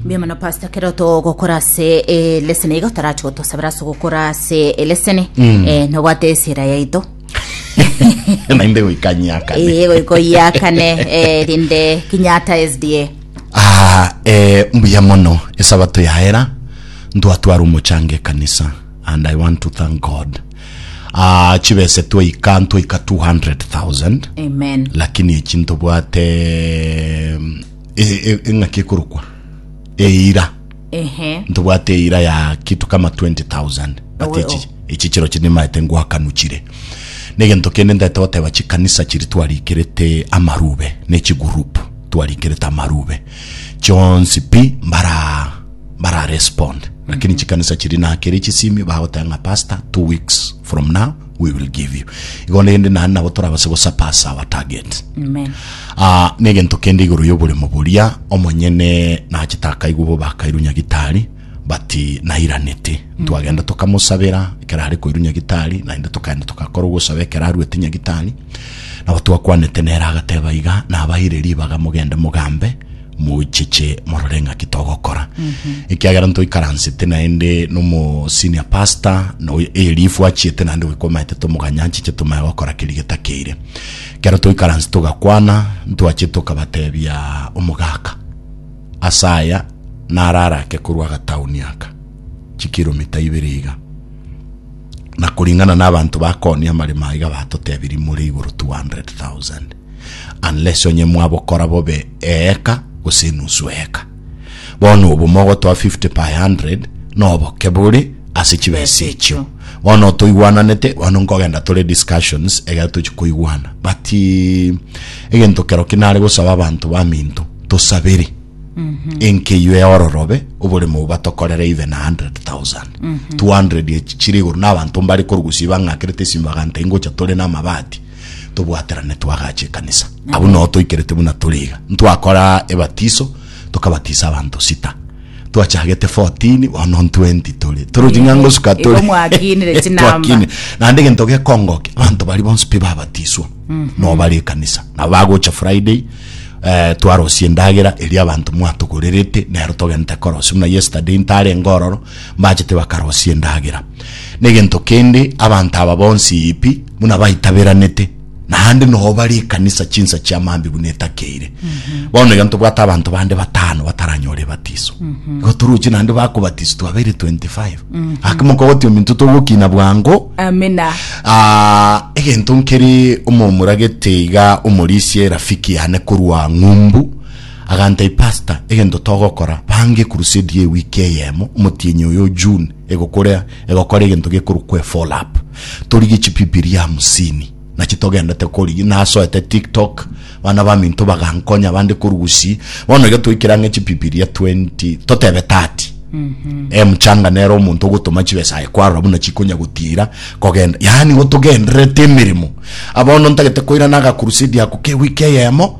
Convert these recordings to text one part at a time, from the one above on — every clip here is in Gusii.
mbuya mono pastor kero togokora ase eleseni iga tarachi gotosabera ase ogokora ase eleseni eh, nobwate esira yaito nainde goikanyaka Eh, goika oyakane eh, rinde kinyata sda Ah, eh, mbuya mono esabato yaera ntwatwara omochango ekanisa and i want to thank god Ah, chibese twaika ntwaika 200,000 Amen. lakini echi ntobwate mm, e- e- eng'aki ekorokwa eira Ehe. ntobwate eira ya kitu kama 20000 but Owe, echi- echi chiro chiri nimaete ngwakanuchire negento kende ndete goteba chikanisa chiri twarikerete amarube nechigurupu twarikerete amarube chionsi pi mbara bara respond lakini chikanisa chiri nakere chisimio bagoteba ng'a pastor two weeks from now we will give you igo rende nani nabo torabase gosapasa our target Amen. Ah, na egento kende igoro y'oboremo boria omonyene nachete akaigwa bo bakairu nyagitari but nairanete twagenda tokamosabera ekero are koiru nyagitari naende tokaenda togakora ogosaba ekero arwete nyagitari nabo twakwanete nere agateba iga nabaire ribaga mogende mogambe Mochiche morore ng'aki togokora, ekiagera ntoikaransete naende nomo senior pastor no Elifu achiete naende goika omaete tomoganye anchiche tomanye gokora keria getakeire. Ekero toikaranse togakwana ntwachiete tokabatebia omogaka ase aya naro arake korwa agatauni aka chikiromita ibere iga na koringana na abanto bakooni amaremo aiga batotebirie more igoro 200,000. unless onye mwabokora bobe eeka gose enusu eeka. Bono obo mogotoa 50 per 100 noboke bore ase chibesa echio. Bono toigwananete, bono nkogenda tore discussions egere tochi koigwana. But eh, egento kero kinare gosaba abanto baminto tosabere enkeyio eororobe oboremo obo batokorere even 100,000 200 echi chire igoro na abanto mbare korugusia bang'akerete esimi baganta ingocha tore na amabati tobwaterane twagache ekanisa abwo nao toikerete buna tore iga ntwakora ebatiso tokabatisa abanto sita twachagete 14 bono 20 tore tore ochi ng'a ngosuka Igo tore mwakinire chinamba. Twakine. naende egento gekongoke abanto bari bonsi pi babatiswa nao bare ekanisa nabo bagocha friday eh, twarosia endagera eria abanto mwatogorerete nero togente korosia buna yesterday ntarenge ororo mbachete bakarosia endagera na egento kende abanto aba bonsi pi buna baitaberanete, naende noo bare ekanisa chinsa chia maambi buna etakeire. Bono iga ntobwate abanto bande batano bataranyora ebatiso. Igo toroche naende bakobatiswa twabeire 25. Ake mokogotia ominto togokina bwango. Amina. Ah, egento nkeri omomuragete iga omorisia erafiki yane korwa ng'umbu agantebia pastor egento togokora bange crusade ye wiki eyemo omotienyi oyo june egokora egokora egento gekorokwa efollow up Torigie chipipiria hamsini nachi togendete korigia nasoete tiktok bana baminto bagankonya bande korugusi bono iga toikera ng'e chipipiria 20 totebe 30 mm -hmm. e mchanga nero omonto ogotoma chibesa aye kwarora buna chikonya gotira kogenda yani gotogenderete emeremo abono ntagete koira naga crusade ako ke wiki eyemo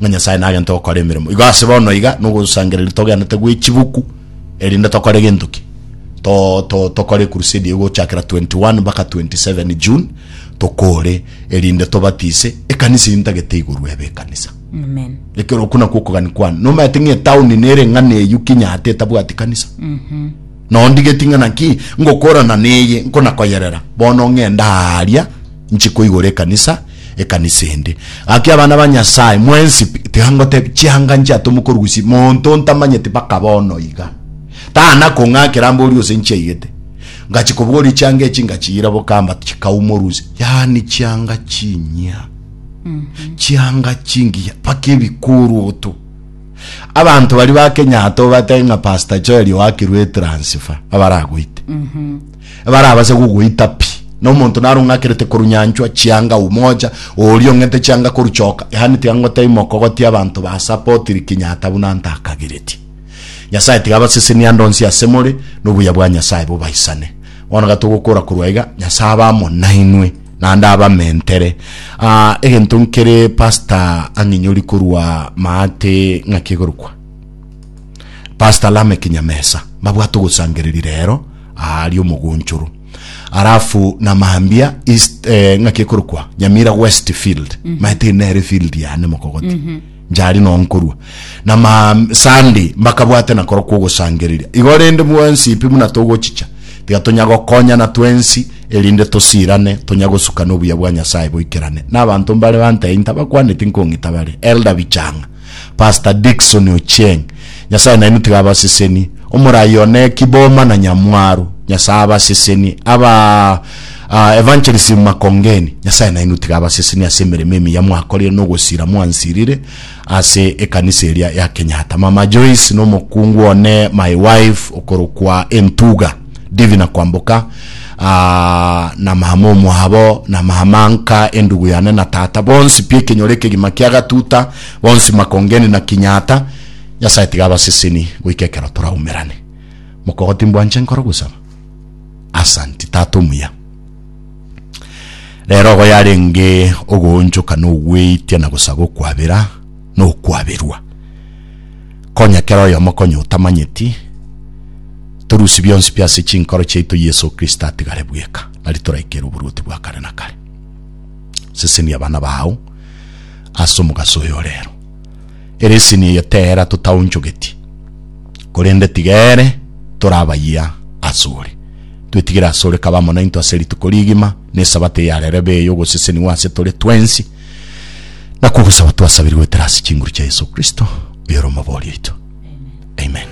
ng'a Nyasae nagente gokora emeremo. Igo ase bono iga nogosangereria togenete gwe chibuku erinde tokore gento ki? To, to, tokore crusade eye gochakera 21 mpaka 27 June tokore erinde tobatise ekanisa eri ntagete iguru ebe ekanisa. Amen. Ekero okuna kwokogani kwane. Nomaete ng'e town nere ng'ana eyu kinyate etabwati kanisa. Nondigeti ng'a naki ngokorana neye nkonakoyerera, bono ng'ende aaria nchi koigora ekanisa, ekanisa ende. Gaki abana ba Nyasae, mwensi pi, tiga ngotebie, chianga nchiato mokorusia monto ntamanyeti mpaka bono iga. Tana kong'akera mbori ose nchiaigete. Ngachi kobogoria chianga echi ngachiira bokamba chikau morusia. Yaani chianga chinyia, chianga chingiya, mpaka ebikoruoto. Abanto baria ba Kenyatta obate ng'a Pastor Joel oakirwe etransifa abaragoite. Ebarabase gogoita pi. Na omonto naro ng'akerete korunyanchwa chianga umoja, oria ong'ete chianga koruchoka, yaani tiga ngotebie mokogotia abanto ba supportiri Kenyatta buna ntakagereti. Nyasaye tiga abasesenie ande onsi ase more, na obuya bwa Nyasaye bobaisane. Bono ga togokora korwa iga, Nyasaye abe amo nainwe. Naende abamentere. Ah, egento nkere Pastor ang'inyori korwa maate ng'aki egorokwa. Pastor Lameck Nyamesa, mbabwate ogosangereri rero, aria omogonchoro. Alafu na Mambia East, eh, ng'aki ekorokwa, Nyamira Westfield. Maete nere field yane mokogoti. Njare noo nkorua na ma Sunday mbakabwate na korokwa ogosangereria igo, rende bwensi pi buna togochicha, tiga tonya gokonyana twensi, erinde tosirane, tonya gosukana obuya bwa Nyasae boikerane. Nabanto mbare bantee intabakwaneti nkong'ita bare, Elder Bichang'a, Pastor Dickson Ochieng, Nyasae nainwe tiga abasesenie, omorai one ki boma na nyamwaro, Nyasae abasesenie, aba Ah, Evangelism Makongeni, Nyasae nainwe tiga abasesenie ase emeremo emiya mwakorire na ogosira mwansirire ase ekanisa eria ya Kenyatta. Mama Joyce na omokungu one, my wife, okorokwa Entuga, Divina Kwamboka, ah, na mama omwabo, na mama nka, endugu yane na tata, bonsi pi ekenyoro ekegima kia Gatuta, bonsi Makongeni na Kinyata, Nyasae tiga abasesenie goika ekero toraumerane. Mokogoti mbwanche nkore ogosaba. Asanti tata omuya. Rero ogo yarenge ogoonchoka na ogweitia na gosaba okwabera na okwaberwa. Konya kera oyomo konya otamanyeti, torusie bionsi pi ase chinkoro chiaito Yeso Kristo atigare bweka, nari toraikere oboruoti bwa kare na kare. Sesenia abana bao ase omogaso oyo rero. Eresini eye tera totaonchogeti, korende tiga ere tore abayia asore. Twetigire asore kabe amo nainto ase rituko rigima, na Esabato eyare rebe ey'ogosesenigwa ase tore twensi, na kogosaba twasabire goetera ase chinguru chia Yeso Kristo, oyore omobori oito. Amen.